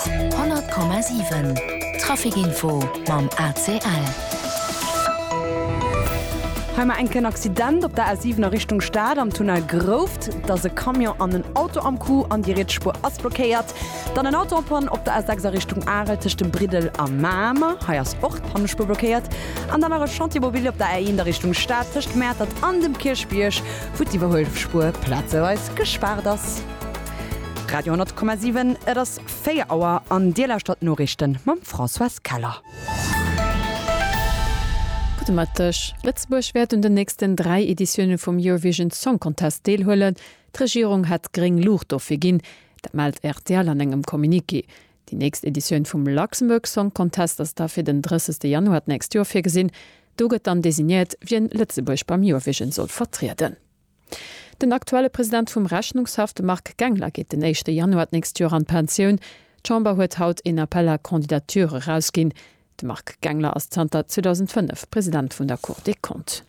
100,7 Trafic Info mam ACL. Hei mar enken Accident op der A7 a Richtung Stad am Tunnel Grouft. Et ass e Camion an en Auto am Coup an déi riets Spuer ass blockéiert. Dann en Auto en Panne op der A6 a Richtung Arel tëscht dem Briddel a Mamer. Hei ass och d'Pannespuer blockéiert. An dann nach e Chantier mobil op der A1 a Richtung Stad tëscht Mäertert an dem Kierchbierg, wou d'Iwwerhuelspuer plazeweis gespaart ass. Radio 10,7, Et ass 4 Auer an Dir lauschtert d'Noriichte mam Françoise Keller. Gudde Mëtteg. Lëtzebuerg wäert un den nächsten dräi Editioune vum Eurovision Song Contest deelhuelen. D'Regierung hätt gréng Luucht dofir ginn. Dat mellt rtl an engem Communiqué. Déi nächst Editioun vum Luxembourg Song Contest ass da fir den 30 Januar d'nächst Joer virgesinn. Do gëtt dann designéiert, wien Lëtzebuerg beim Eurovision soll vertrieden. Den aktuelle President vum Rechnungshaff, de Marc Gangler, geet den éischte Januar d'nächst Joer an d'Pensioun. D'Chamber huet haut een Appel à candidatures erausginn. De Marc Gangler ass zanter 2005 President vun der Cour des Comptes.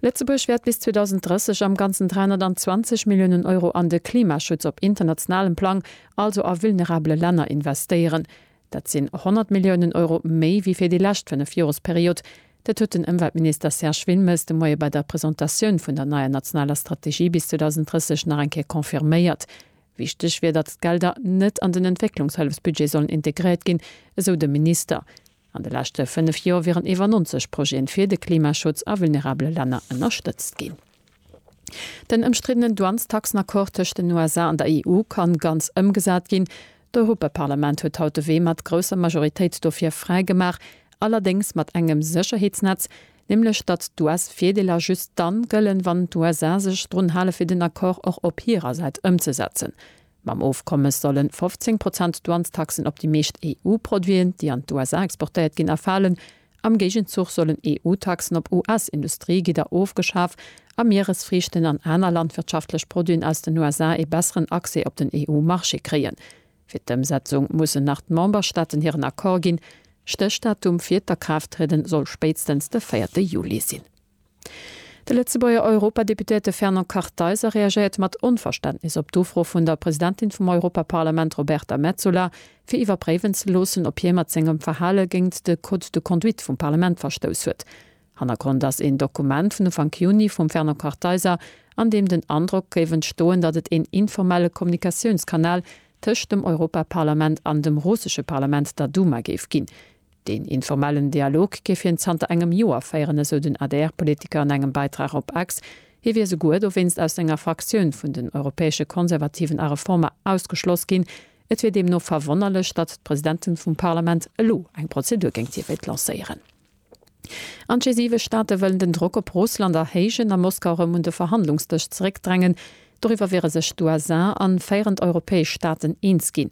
Lëtzebuerg wäert bis 2030 am Ganzen 320 Milliounen Euro an de Klimaschutz op internationalem Plang, also a vulnerabele Länner, investéieren. Dat sinn 100 Milliounen Euro méi wéi fir déi lescht fënnef Joresperiod. Dat huet den Ëmweltminister Serge Wilmes de Moie bei der Presentatioun vun der neier nationaler Strategie bis 2030 nach eng Kéier confirméiert. Wichteg wier, datt d'Gelder net an den Entwécklungshëllefsbudget sollen integréiert ginn, esou de Minister. An de leschte fënnef Jore wieren iwwer 90 Projete fir de Klimaschutz a vulnerabele Länner ënnerstëtzt ginn. Den ëmstriddenen Douanestaxen-Accord tëscht den USA an der EU kann ganz ëmgesat ginn. D'Europaparlament huet haut de Wee mat grousser Majoritéit dofir fräi gemaach, allerdéngs mat engem Sécherheetsnetz, nämlech datt d'US-Virdeeler just dann gëllen, wann d'USA sech drun hale fir den Accord och op hirer Säit ëmzesetzen. Mam Ofkommes sollen 15 Prozent Douanestaxen op déi meescht EU-Produiten, déi an d'USA exportéiert ginn, erfalen. Am Géigenzuch sollen EU-Taxen op US-Industriegidder ofgeschaf a Mieresfriichten an aner landwirtschaftlech Produiten aus den USA ee besseren Accès op den EU-Marché kréien. Fir d'Ëmsetzung mussen nach d'Memberstaaten hiren Accord ginn. Stéchdatum fir d'Akraafttriede soll spéitstens de véierte Juli sinn. De Lëtzebuerger Europadeputéierte Fernand Kartheiser reagéiert mat Onverständnis op d'Ufro vun der Presidentin vum Europaparlament Roberta Metsola, fir iwwerpréiwen ze loossen, ob hie mat sengem Verhale géint de Code de conduite vum Parlament verstouss huet. Hannergrond ass een Dokument vun Ufank Juni vum Fernand Kartheiser, an deem den Androck géif entstoen, datt et een informelle Kommunikatiounskanal tëscht dem Europaparlament an dem russesche Parlament, der Duma, géif ginn. Deen informellen Dialog géif hien zanter engem Joer féieren, esou den ADR-Politiker an engem Bäitrag op X. Hie wier souguer dowéinst aus senger Fraktioun vun den Europäesche Konservativen a Reformer ausgeschloss ginn. Et wier deemno verwonnerlech, datt d'Presidentin vum Parlament elo eng Prozedur géint hie wéilt lancéieren. An d'G7 Staate wëllen den Drock op Russland erhéijen a Moskau erëm un de Verhandlungsdësch zeréckdrängen. Doriwwer wiere sech d'USA an féierend europäesch Staaten eens ginn.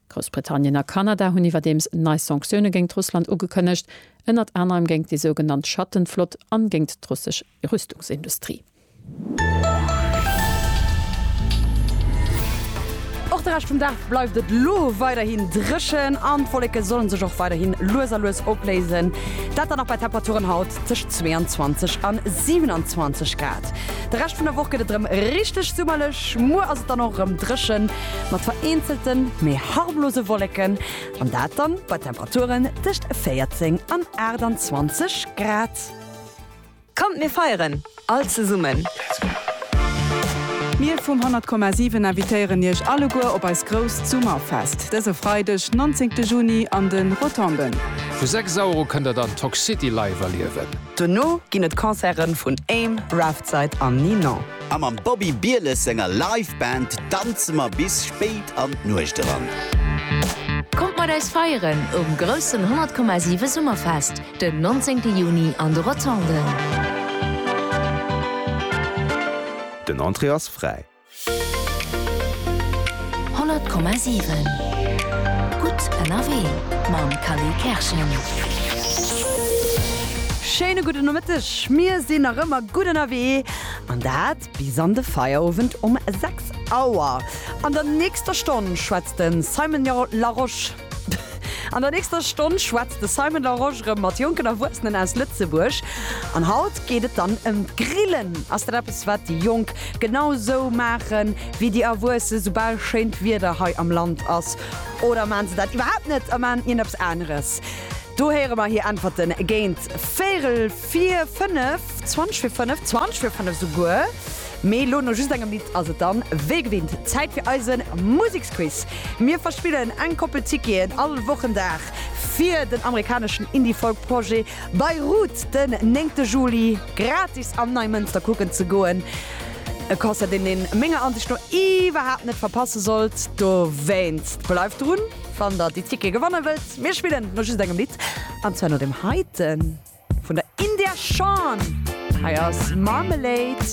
Groussbritannien a Kanada hunn iwwerdeems nei Sanktioune géint Russland ugekënnegt, ënnert anerem géint déi sougenannt Schattenflott an géint d'russesch Rüstungsindustrie. Och de Rescht vum Dag bleift et lo weiderhin dréchen an d'Wolleke sollen sech och weiderhin lues a lues opléisen. Dat dann och bei Temperaturen haut tëscht 22 an 27 Grad. De Rescht vun der Woch gëtt et erëm richteg summerlech. Muer ass et dann och erëm dréchen. mat vereenzelten, méi harmlose Wolleken, an dat dann bei Temperaturen tëscht 14 an 28 Grad. Kommt mir feieren all zesummen! Mir vum 100 Komma 7 invitéieren iech alleguer op eist grousst Summerfest dëse Freideg 19 Juni an de Rotonden. Vu 6 Auer u kënnt der dann Toxcity live erliewen. Dono ginn et Concerte vun Aim, Raftside an Ninon. A mam Bobby Bieles senger Live Band danze mer bis spéit an d'Nuecht eran. Kommt mat eis feieren um groussen 100,7 Summerfest den 19 Juni an de Rotonden. Den Entrée ass fräi. 100,7 Gutt ënnerwee mam Khalil Kerschen. Schéine gudde Nomëtteg. Mir sinn nach ëmmer gutt ënnerwee. An dat bis an de Feierowend um 6 Auer. An der nächster Stonn schwätzt de Simon Larosche, an der nächster Stonn schwätzt de Simon Larosche erëm mat jonken Erwuessenen aus Lëtzebuerg. An haut geet et dann ëm d'Grillen. Ass dat eppes, wat déi Jonk genau esou maache wéi déi Erwuesse soubal schéint Wieder hei am Land ass? Oder maache se dat iwwerhaapt net a maachen ierneps aneres? Do héiere mer hir Äntwerten géint véierel. Fir fënnef, zwanzeg fir fënnef, zwanzeg fir fënnef esouguer, mee elo no just engem Lidd ass et dann wéi gewinnt Zäit fir eise Museksquiz. Mir verspillen eng Koppel Ticketen all Wochendag fir den amerikaneschen Indie-Folk-Projet Beirut den néngte Juli gratis am Neimënster kucken ze goen. E Concert, deen een menger Ansicht no iwwerhaapt net verpasse sollt. Dowéinst bleift drun, wann der déi Tickete gewanne wëllt. Mir spillen no just engem Lidd, an zwar no deem heiten. Vun der India Shawn. Hei ass Marmalade.